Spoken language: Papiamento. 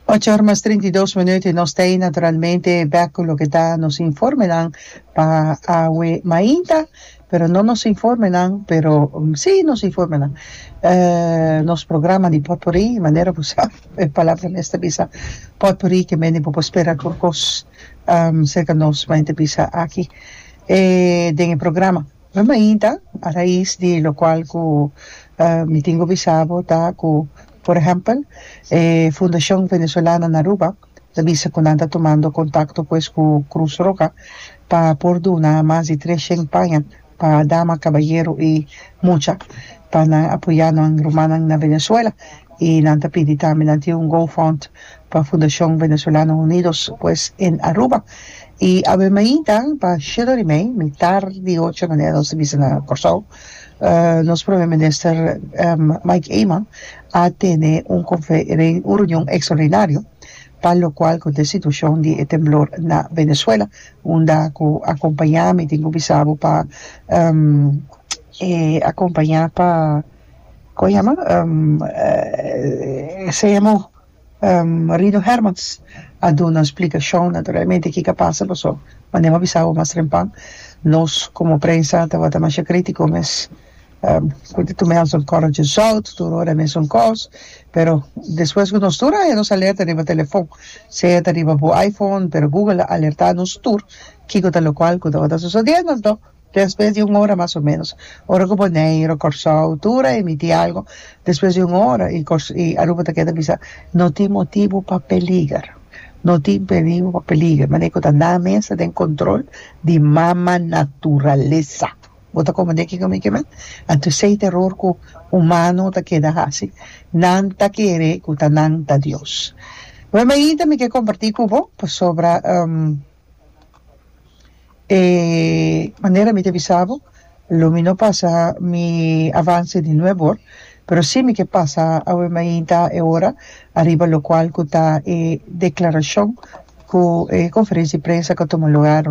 Ocho or mas trinta i dos minuut y nos ta ei naturalmente bek cu loke ta nos informenan pa awe mainta pero no nos informenan pero si nos informenan nos programa di potpourri y manera bo sa e palabra mes ta bisa potpourri ke men di bo por spera tur cos cerca nos mainta bisa aki den e programa. Na mainta, a rais di lokual ku mi tin ku bisa bo ta ku por ehèmpel e Fundashon Venezuelana na Aruba ta bisa ku nan ta tumando kontakto pues ku Krus Roha pa por duna mas di tres shen paña pa dama, kabayero i mucha pa nan apoyá nos rumannan na Venezuela. Y nan ta pidi tambe, nan tin un GoFund pa Fundacion Venezolano Unidos pues en Aruba. Y awe mainta pa sheddo di mei, mitar di ocho manera nos ta bisa na Corsou, nos Prome Minister Mike Eman a tene un confe, un reunion extraordinario pa lo cual con ta e situacion di e temblor na Venezuela, unda cu a acompaña, mi tin cu bisa bo pa e acompaña pa. Con yama esey amo Rino Hermans a duna splicacion naturalmente kico a pasa paso mane bo a bisa awo mas rempa nos como prensa tabata masha critico mes cu di tume alzan correntje zout tur ora mesun cos pero despues cu nos tur a haña nos alerta riba telefon sea ta riba bo iPhone pero Google a alerta nos tur kico ta locual cu tabata sucediendo anto Despues di un ora mas o menos, ora ku Boneiru, Kòrsou, tur a emití algu, despues di un ora i Kòrs i Aruba ta keda bisa no tin motibu pa peliger, no tin perigu pa peliger, manera ku ta nan mes ta den kontrol di Mama Naturalesa. Bo ta komprendé kiko mi ke men? Anto esei ta eror ku humano ta keda hasi, nan ta kere ku ta nan ta Dios. Oe mainta mi ke kompartí ku bo pasobra e manera mi ta bisa bo lo mi no pasa mi avance di nueve or pero si mi ke pasa awe mainta e ora ariba locual cu ta e declaracion cu e conferencia di prensa cu a tuma lugar